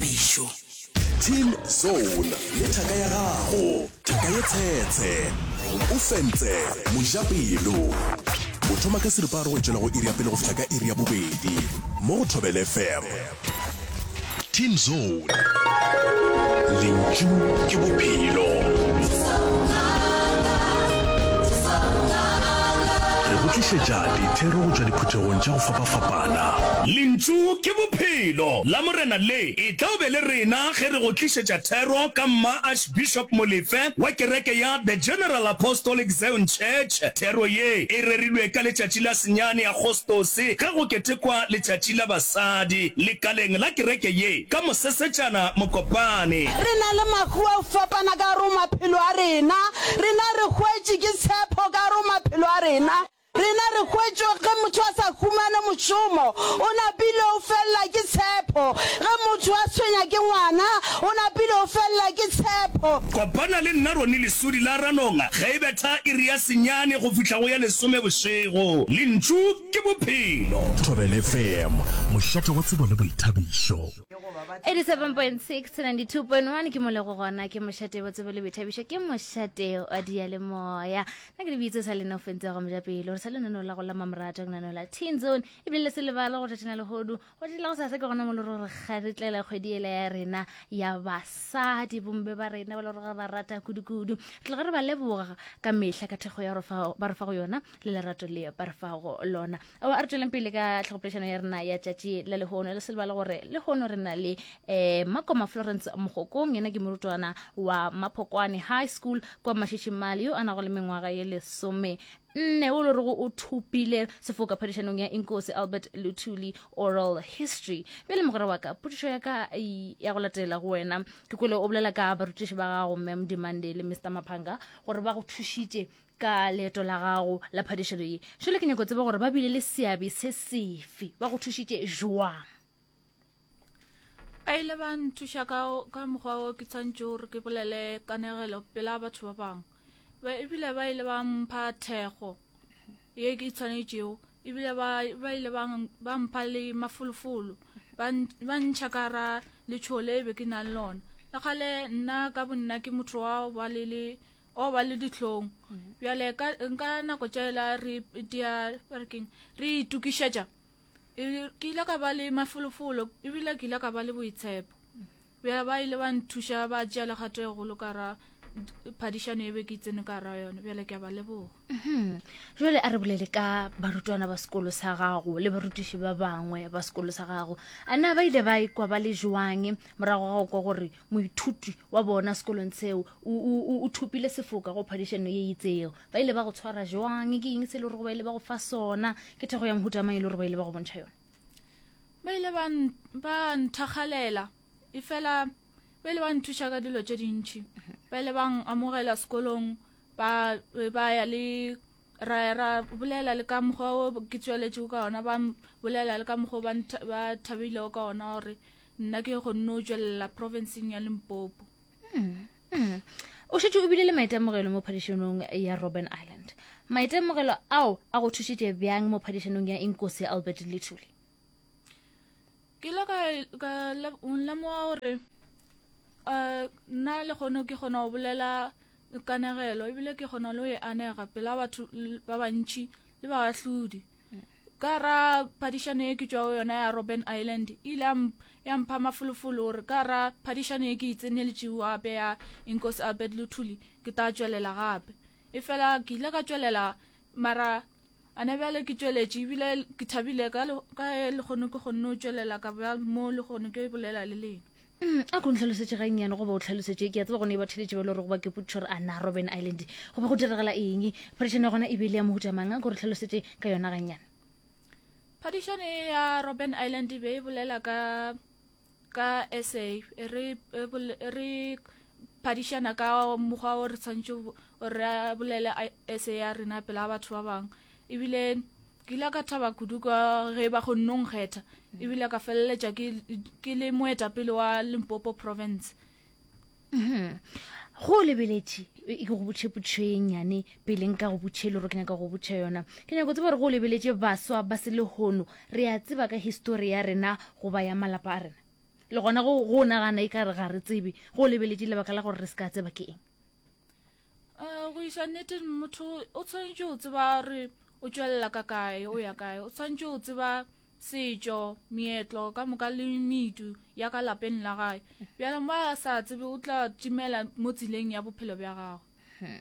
phišo. Team Zone le thaka ya gago, thaka ye tshetshe. O fentse mojapelo. O thoma ka seripa a rogwetšela go iri ya pele go fihla ka iri ya bobedi mo go Thobela FM. Team Zone, lentšu ke bophelo. Re go tlišetša dithero go tšwa diphuthegong tša go fapafapana. Morena. Lentšu ke Bophelo. La Morena le etla o be le rena ge re go tlišetša thero ka Mma Archbishop Molefe wa kereke ya The General Apostolic Zion Church. Thero ye e rerilwe ka letšatši la senyane Agostose ge go ketekwa letšatši la basadi lekaleng la kereke ye ka Mosesetšana Mokopane. Re na le mahu a go fapana ka gare go maphelo a rena. Rena re hwetše ke tshepho ka gare go maphelo a rena. Rena re hwetše ge motho a sa humane mošomo, o napile o felela ke tshepho, ge motho a tshwenya ke ngwana, o napile o felela ke tshepho. Kopana le nna Ronnie Lesodi la Ranonga ge e betha iri ya senyane go fihla go ya lesome bošego. Lentšu ke Bophelo. Thobela FM, mošate wa tsebo le boithabišo. 87.6 to 92.1 ke mo le go gona, ke mošate wa tsebo le boithabišo, ke mošate wa diyalemoya. na ke lebitse sa lena o fentse go moja pelo re sa lenaneo la go la mamorato ke naneo la teen zone ebile le se lebala go tšatšana legodu go tšatši la go sase ke gona mo le ro re kgaretlela kgwedi ela ya rena ya basadi bombe ba rena ba le gore ba rata kudu-kudu tla go re ba leboga ka mehla ka thekgo ya ba re fa go yona le lerato le ba re fa go lona o a re tsweleng pele ka tlhogopolešano ya rena ya tšatši la lehono le selebale gore lehono re na le um makoma florence mogokong yena ke morutwana wa maphokwane high school kwa mashishimale yo a nago le mengwaga ye lesome nne o lo rego o thopile sefoka phadišanong ya inkosi albert luthuli oral history bjale mogwera wa ka potišo ya ka ya go latela go wena ke kwele o bolela ka barutiši ba gago mem dimande le mr maphanga gore ba go thušitše Ka leeto la gago la phadišano ye, šele ke nyako tseba gore ba bile le seabe se sefe, ba go thušitše jwang? Ba ile ba nthuša ka, ka mokgwa o ke tshwantše gore ke bolele kanegelo pela batho ba bangwe. Ba, ebile ba ile ba mpha thekgo ye ke tshwanetšego, ebile ba, ba ile ba, ba mpha le mafolofolo, ba, ba ntšha ka ra letšhogo le be ke nang lona. Le kgale nna ka bonna ke motho wa ba le le o ba le dihlong bjale ka nka nako tšela re dia parking re itukišetša e, ke ile ka ba le mafolofolo ebile ke ile ka ba le boitshepo bjale ba ile ba nthuša ba tšea legato e golo ka ra phadišano e be ke itsene ka ra yone bjale ke a ba leboga Mhm. jale a re bolele ka barutwana ba sekolo sa gago le barutiši ba bangwe ba sekolo sa gago a na ba ile ba ikwa ba le jwang morago ga go kwa gore moithuti wa bona sekolong seo o thopile sefoka go phadišano ye itseo ba ile ba go tshwara jwang ke eng se e le gore ba ile ba go fa sona ke thego ya mohutamang e le gore ba ile ba go bontšha yone ba ile ba nthagalela efela ba ile ba nthuša ka dilo tše dintšhi mhm. ba ile ba amogela sekolong ba be ba ya le ra ra bolela le ka mokgwa o ke tsweletšego ka ona ba bolela le ka mokgwa o ba thabilego ka ona gore nna ke kgonne o tswelela provinceng ya limpopo hmm, hmm. o šetse o bile le maitemogelo mo phadišanong ya robben island maitemogelo ao a go thušitše bjang mo phadišanong ya inkosi albert lethuli ke ile ka ka lemoga gore um nna le kgono ke kgona go bolela kanegelo ebile ke kgona le go e anega pela batho ba bantšhi le ba bahlodi ka ra phadišano e ke tšwa go yona ya robben island e ile ya mpha mafolofolo gore ka ra phadišano e ke e tseneletšego gape ya inkosi albert luthuli ke tla tšwelela gape e fela ke ile ka tšwelela mara Ana bjale ke tšweletše ebile ke thabile ka ge legono ke kgonne o tšwelela ka ba mo legono ke bolela le lena. A ko ntlhalosetše gannyane goba o tlhalosetše, ke a tseba gone e ba theletše ba le gore go ba ke potšišo gore a na Robben Island go be go diragala eng, phadišano ya gona e be e le ya mohuta mang, a ko re tlhalosetše ka yona gannyane. Phadišano ye ya Robben Island e be e bolela ka ka sa re re phadišana ka mokgwa o re tshwanetse re bolele sa ya rena pela batho ba bangwe ebile ke ile ka thaba kudu ka ge ba go nnong kgetha ebile ka feleletša ke le moetapele wa limpopo province go o lebeletše e ke go botšhe potšho e nnyane pele nka go botšhe le gore ke nyaka go botšha yona ke nyako tseba gore go o lebeletše baswa ba se lehono re a tseba ka histori ya rena goba ya malapa a rena le gona go o nagana e ka re ga re tsebe go o lebeletše lebaka la gore re se ka tseba ke eng um go iša nneteng motho o tshwanetse o tseba gore o tšwelela ka kae o ya kae o tshwanetse o tseba setšo meetlo ka moka le medu ya ka lapeng la gae bjale mo a sa tsebe o tla timela mo tseleng ya bophelo bja gago hmm.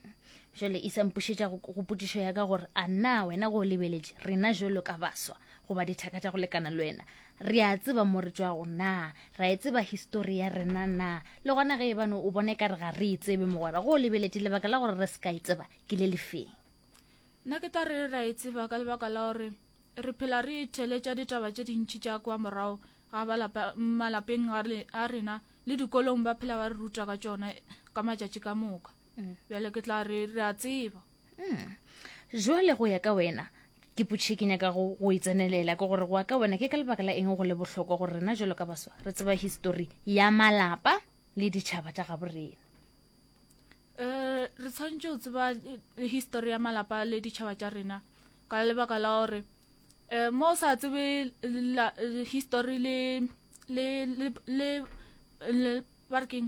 jale e sampušetša go potišo ya ka gore a na wena go lebeletše rena jalo ka baswa goba dithaka tša go lekana le wena Re a tseba mo re tšwago na? Ra e tseba histori ya rena na? Le gona ge e bane o bone ka re ga re e tsebe mogwera, go o lebeletše lebaka la gore re se ka e tseba ke le lefeng? Nna ke tla re ra e tseba ka lebaka la gore re phela re itheletša ditaba tše dintši tša kwa morago ga malapeng a rena le dikolong ba phela ba re ruta ka tšona ka matšatši ka moka. mm. bjale ke tla re re a tseba mm. jwale go ya ka wena ke putšhe ke nyaka go e tsenelela ke gore go ya ka wena ke ka lebaka la eng go le bohlokwa gore rena jalo ka baswa re tseba histori ya malapa le ditšhaba tša gabo rena um re tshwanetse go tseba eh, histori ya malapa le ditšhaba tša rena ka lebaka la gore um mo o sa tsebe histori le le le le barking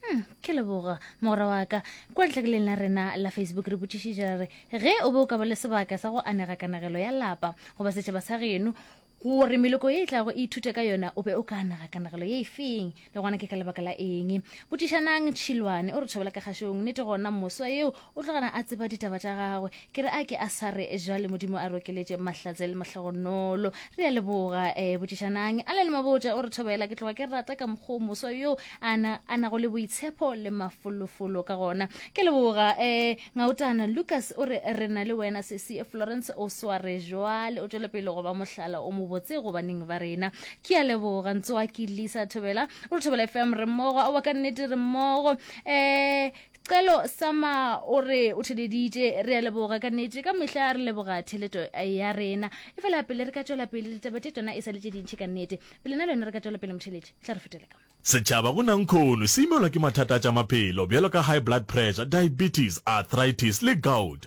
Hmm, ke leboga mogora wa ka kwa letlakeleng la rena la facebook re botšišitša re ge o be o ka ba le sebaka sa go anega kanagelo ya lapa goba setšhaba sa geno gore meloko e e tlago e ithute ka yona o be o ka anega kanagelo ye e feng le gona ke ka lebaka la eng botšišanang tšhilwane o re thobela ka kgašong nete gona moswa yeo O tlo gana a tseba ditaba tša gagwe. Ke re a ke a sa re jwale Modimo a rokeletše Mahlatse le Mahlogonolo. Re a leboga. Eh, botšišanang. Allen Mabotja o re thobela. Ke tloga ke rata ka mokgwa o moswa yo a na, a nago le boitshepo le mafolofolo ka gona. Ke a leboga. Eh, Ngautana Lucas o re re na le wena sesi. Florence o sware jwale. O tšwele pele go ba mohlala o mobotse go baneng ba rena. Ke a leboga. Ntsoaki Lisa Thobela o re Thobela FM re mmogo. Aowa ka nnete re mmogo. Eh, Celo Sama o re o theleditše, re a leboga ka nete, ka mehla re leboga theleto ya rena. E fela pele re ka tšwela pele, ditaba tše tšona e sa le tše dintši ka nete. Pele na le yona re ka tšwela pele motheledi, tla re fetele ka mo. Setšhaba go na nkhono se imelwa ke mathata a tša maphelo bjalo ka high blood pressure, diabetes, arthritis le gout.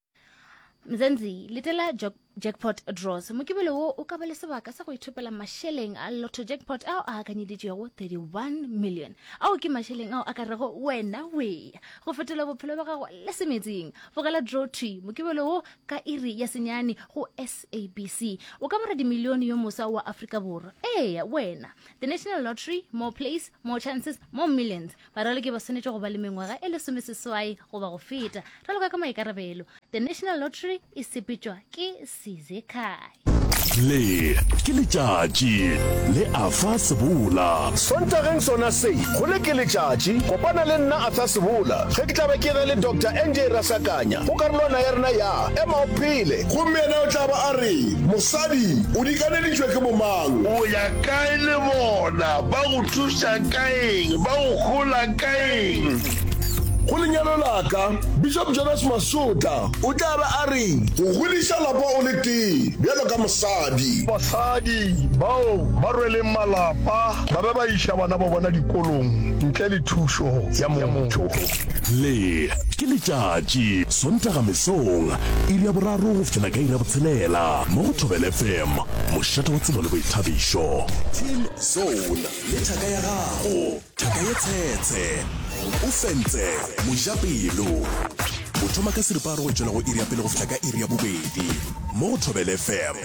mzenzi letela jackpot draws mokibelo wo o ka ba le sebaka sa go ithopela mašeleng a lotto jackpot ao a akanyeditšego 31 million ao ke mašeleng ao a ka rego wena weya go fetola bophelo ba gago le semetsing bogela draw t mokibelo wo ka iri ya senyane go sabc o ka bara dimilione yo mosa wa afrika borwa eya wena the national lottery more place more chances more millions Baraloki ba swanetše go ba le mengwaga e lesomeseswai goba go feta, raloka ka maikarabelo. The National Lottery e sepetšwa ke Sizekai. Le ke letšatši le Arthur Sebola. Sontageng sona se, go Le ke letšatši, kopana le nna Arthur Sebola ge ke tla be ke ge le Doctor NJ Rasakanya go karolwana ya rena ya Ema o Phele. Gomme yena o tla ba a re, Mosadi, o dikaneditšwe ke bomang? O ya kae le bona ba go thušago? tša ka eng? Ba go hola ka eng? Go lenyalo la ka, Bishop Jonas Masotla o tla be a re. Go godiša lapa o le tee bjalo ka mosadi. Basadi bao ba rweleng malapa ba be ba iša bana ba bona dikolong ntle le thušo ya motho. Le ke letšatši, Sontaga mesong, iri ya boraro go fihlela ka iri ya botshelela mo go Thobela FM, mošate wa tsebo le boithabišo. Team Zone. Pula le thaka ya gago. Thaka ye tshetshe. O fentse. Mojapelo. O thoma ka seripagare go tšwela go iri ya pele go fihla ka iri ya bobedi. Mo go Thobela FM.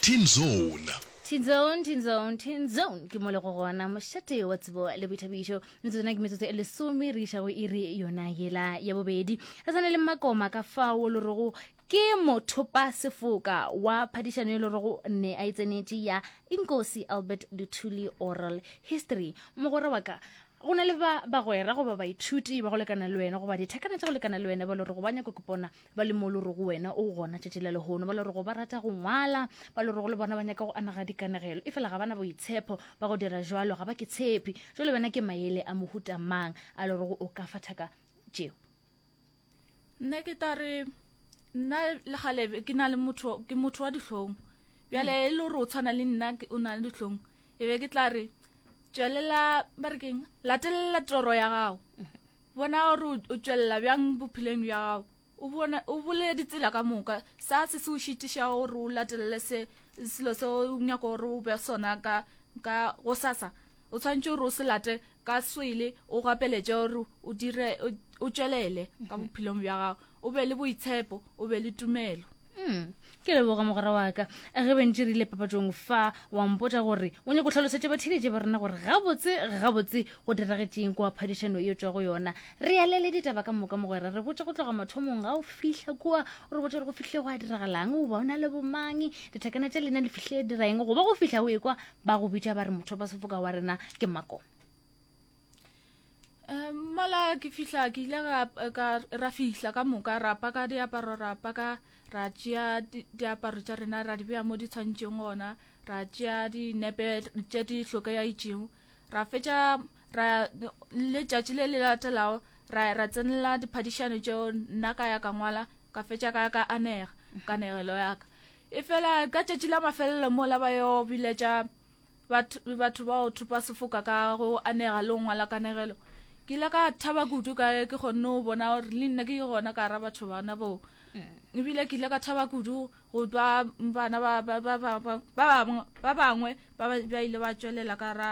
Teen Zone. Teen Zone, Teen Zone, Teen Zone. Ke mo le go gona mošate wa tsebo le boithabišo. Metsotso ke metsotso e lesome re iša go iri yona yela ya bobedi. Re sane le makoma ka fao lo rego Ke mothopasefoka wa phadišano e le rego ne a e tsenetše ya Inkosi Albert Luthuli Oral History. Mogwera wa ka, go na le ba bagwera goba baithuti ba go lekana le wena goba dithekana tša go lekana le wena ba le rego ba nyako kipona ba le mo le rego wena o gona tšatši la lehono, ba le rego ba rata go ngwala, ba le rego le bona ba nyaka go anega dikanegelo efela ga ba na boitshepho ba go dira bjalo, ga ba ke tshepe. Bjale wena ke mayele a mohuta mang a le rego o ka fa thaka tšeo? nna ke tla re nna le gale ke na le motho ke motho wa dihlong bjale e le gore o tshwana le nna o na le dihlong e be ke tla re tswelela ba re keng latelela toro ya gago bona gore o tswelela bjang bopheleng bja gago o bole ditsela ka moka sa se se o šitiša gore o latelele se selo se o nyako gore o be sona ka ka go sasa O tshwanetse gore o se late ka swele, o gapeletše gore o dire o tšwelele ka bophelong bja gago, o be le boitshepo, o be le tumelo. Hmm. ke leboga mogwera wa ka ge bentši re ile papatšong fa wa mpotša gore o nyako tlhalosetša batheeletše ba rena gore gabotse gabotse go diragetšeng kua phadišano e tšwa go yona re alele ditaba ka moka mogwera re botša go tloga mathomong ga o fihla kua o re botša gore go fihle go a diragalang o ba o na le bomang dithekana tša lena le fihle diraeng goba go fihla o e kwa ba go bitša ba re motho ba sefoka wa rena ke mako mala ke fihla ke ile ra fihla ka moka ra paka diaparo ra paka ra tšea diaparo tša rena ra di beya mo di tshwantšeng gona ra tšea dinepe tše di hlokega itšego ra fetša ra letšatši le le latelago ra ra tsenela diphadišano tšeo nna ka ya ka ngwala ka fetša ka ya ka anega ka negelo ya ka Efela ka tšatši la mafelelo mola ba yo biletša batho ba o thopa sefoka ka go anega le go ngwala kanegelo ke ile ka thaba kudu ka ke kgonne go bona gore le nna ke gona ka ra batho bana boo mm. ebile ke ile ka thaba kudu go twa bana ba bangwe ba ile ba tswelela ka ra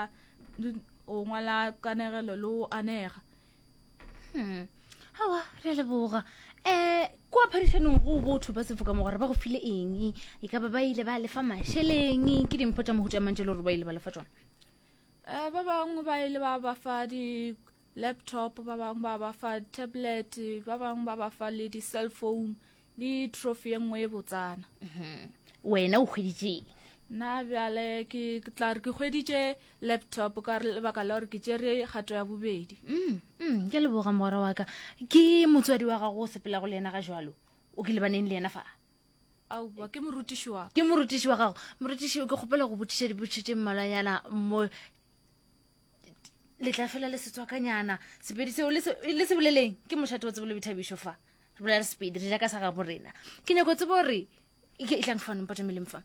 go ngwala kanegelo le go anega hmm. awa re a leboga um kwa phadišanong go botho ba sefoka mogwera ba go file eng e ka ba ba ile ba lefa mašeleng ke dimpho tša mohuta mantse le gore ba ile ba lefa tsona um ba bangwe ba ile ba ba fa di-laptop ba bangwe ba ba fa tablet ba bangwe ba ba fa le di-cell phone Le trophy ye nngwe ye botsana. Wena o hweditšeng? Nna bjale ke tla re ke hweditše laptop ka lebaka la gore ke tšere kgato ya bobedi. Mm, mm, ke leboga mogwera wa ka. Ke motswadi wa gago o sepelago le yena ga jalo? O ke lebaneng le yena fa? Aowa, ke morutiši wa ka. Ke morutiši wa gago. Morutiši, ke kgopela go botšiša dipotšišo tše mmalwanyana mo le tla fela le setswakanyana sepedi seo le se boleleng ke mošate o tsebo le bethabišo fa re bolela re sepedi re ja ka sa gabo rena ke nyako tsebo gore e tlang fano mpata meleng fa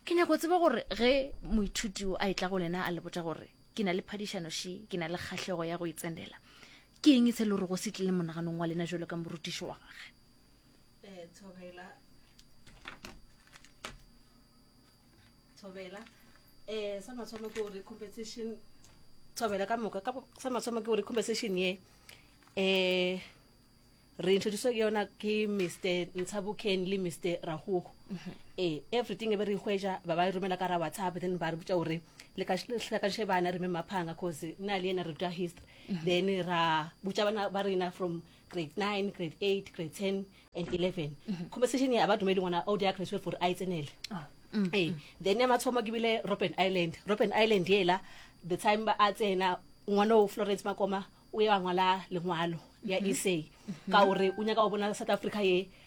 ke nyako tsebo gore ge moithuti o a e tla go lena a le botsa gore ke na le phadišano she ke na le kgahlego ya go e tsenela ke eng e se le gore go se tlile monaganong wa lena jalo ka morutiši wa gage eh, Thobela, Eh, sa mathomo ke gore compensation Thobela ka moka, sa mathomo ke gore compensation ye eh re introduce ke yona ke mr ntshaboken le mr ragogo ee everything e be re hweja ba ba e romela ka ra whatsapp then ba re botsa gore le kaše bana re me maphanga cause nna le ena re ruta history then ra botsa bana ba rena from grade nine grade eight grade ten and eleven conversation ya ba dumedi ngwana o dia graduate gore a e tsenele ah, mm, ee mm. then ya mathomo ke bile robben island robben island ela the time ba a tsena ngwana o florence makoma o ye wa ngwala lengwalo ya mm-hmm. essay ka gore mm-hmm. o nyaka o bona south africa ye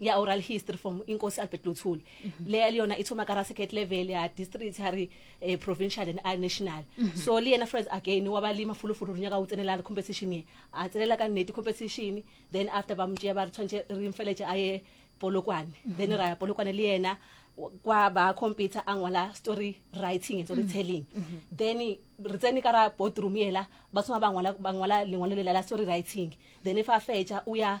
ya oral history from inkosi albert luthuli mhm. leya le yona e thoma ka ra second level ya district ha re eh, provincial and a national mhm. so le yena friends again wa ba le mafulufulu re nyaka o tsenela re competition ye a tsenela ka nnete competition then after ba motšea ba re tshwanetse re mfeletse a ye polokwane mhm. then ra ya polokwane le yena kwa ba computer a ngwala story writing and story telling then re tsene ka ra boardroom ela ba thoma ba ngwala lengwalo lela la story writing then fa fetša o ya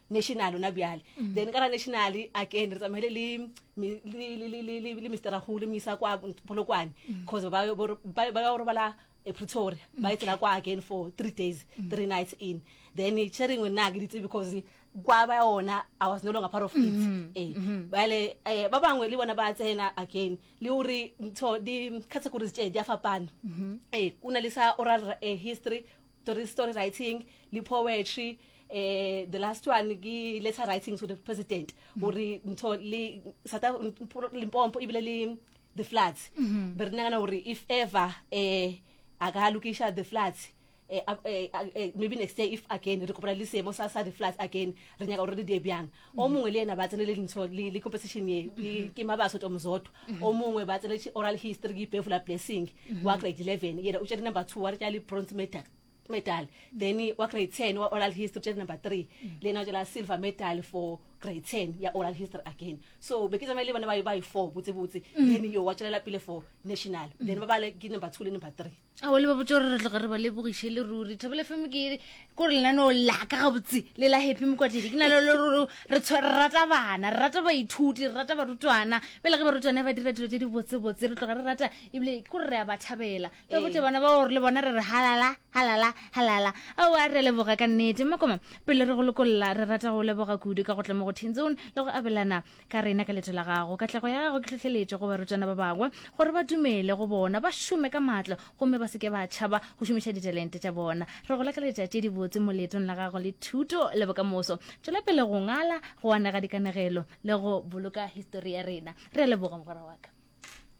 national ona bjale mm. then ka ra national a ke ne re tsamaile le mister rago le moisa kwa polokwane mm. cause ba ya go robala e pretoria mm. ba e tsela kwa again for three days three nights in then sharingwe nna ke ditse because kwa ba yona i was no longer part of it mm-hmm. ee mm-hmm. bale um ba bangwe le bona ba tsena again le gore ntho di-categories tse di a fapana mm-hmm. ee o na le sa oral eh, history story, story writing le poetry eh the last one ke letter writing to the president mm-hmm. gore ntho le limpompo ebile le the floods mm-hmm. be re nagana gore if ever eh a ka lokiša the floods eh, eh, eh, maybe next year if again re kopana le seemo sa sa the floods again re nyaka gore re die bjang o mongwe le ena ba tsenele dintsho le le composition ye ke- ke mabaso to mozotho o mongwe ba tsenele oral history ke ipefula blessing wa grade 11 yena o tšere number two wa re tša le bronze medal medal then wa grade 10 wa oral history o tšere number three le ena o tšela silver medal for grade 10 ya oral history again so be ke tsamaye le bana ba ba yi four botsebotse then yo wa tšwelela pele for national then ba bale ke number two le number three ao le ba botse gore re tloga re ba lebogiše le ruri thabela fm ke kore lenaneo laka gabotse le la happy mokwatledi ke na le lero re rata bana re rata baithuti re rata barutwana pele ge barutwana ba dira dilo tse di botsebotse re tloga re rata ebile ke gore re a ba thabela le botse bana ba gore le bona re re halala halala halala ao a re leboga ka nnete makoma pele re go lokolla re rata go leboga kudu ka go tla mo go teen zone le go abelana Ka rena ka leto la gago. Katlego ya gago ke tlhohleletšo go barutwana ba bangwe gore ba dumele go bona, ba šome ka matla gomme ba se ke ba tšhaba go šomiša ditalente tša bona. Re go lakaletša tše dibotse mo leetong la gago le thuto le bokamoso. Tšwela pele go ngala, go anega dikanegelo le go boloka histori ya rena. Re a leboga, mogwera wa ka.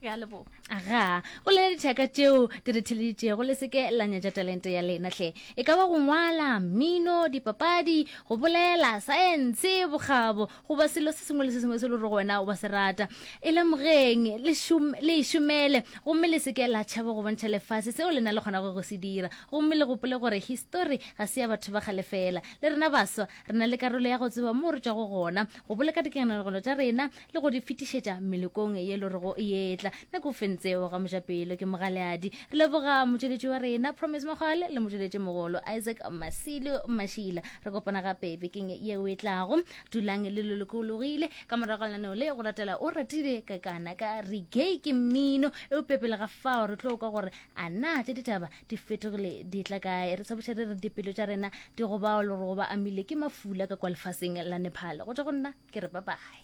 ya lebogo aga o le dithaka tšeo di re theleditšego le seke la nyatša talente ya lena hle e ka ba go ngwala mmino dipapadi go bolela saense bokgabo goba selo se sengwe le se sengwe se le gore wena wa se rata e lemogeng le e šomele gomme le seke la tšhaba go bontšha lefase seo le na le kgonago go se dira gomme le gopole gore histori ga se ya batho ba kgale fela le rena baswa re na le karolo ya go tseba moo re tšwago gona go boloka dikenanegelo tša rena le go di fetišetša melekong ye lorego e etla nako o fentseo ga mojapelo ke mogaleadi re leboga motšweletši wa rena promise mogale le motšweletši mogolo isaac masilo mašila re kopana gape bekeng yeo e tlago dulang le lolokologile ka morago lenaneo le go latela o ratile ka kana ka regay ke mmino e o pepele ga fao re tlo kwa gore a na tše ditaba di fetogile di tla kae re tshaboša re re dipelo tša rena di go bao le gore go ba amile ke mafula ka kwa lefaseng la nepal go tša go nna ke re babae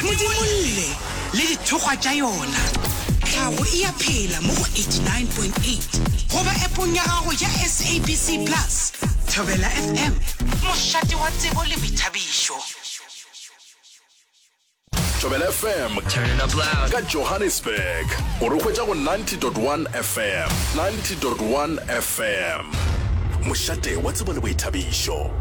modimolle le dithokgwa tša yona tlhago e ya phela mo go 89.8 goba epong ya gago ya sabc plus thobela fm mošate wa tsebo le boithabišo thobela fm ka johannesburg o re hwetša go 90.1 fm 90.1 fm Fm, mošate wa tsebo le boithabišo.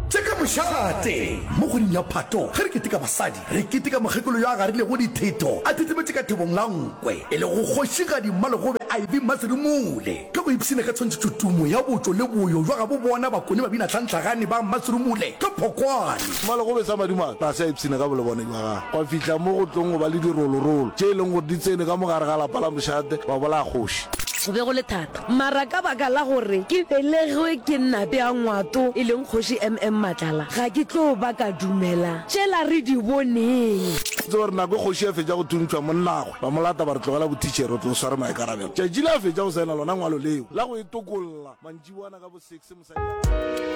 Tše ka mošate. Mo kgweding ya Phato, ge re keteka basadi, re keteka mokgekolo yo a garilego ditheto a thithimetše ka thobong la nkwe, e lego Kgošigadi Mmalegobe Ivy Mmaserumule. Ka go ipshina ka tshwantšhetšo tumo ya botšo le boyo bja gabo bona bakone babina tlhantlhagane ba Mmaserumule ka phokwane, Mmalegobe sa madimabe ga se a ipshina ka bolebone bja gagwe gwa fihla mo go tlong go ba le dirolorolo tše e leng gore di tsene ka mo gare ga lapa la mošate ba bolaya kgoši. Go be go le thata, mara ka baka la gore ke belegwe ke Nnape ya Ngwato e leng Kgoši MM Matlala, ga ke tlo ba ka dumela tšela re di boneng. Itse gore nako e kgoši e fetša go thuntšhwa, monnagwe ba mo lata ba re tlogela bothitšhere, o tlo o sware maikarabelo. Tšatši le a fetša go saena lona ngwalo leo la go e tokolla, mantšiboana ka bo six mosadi a.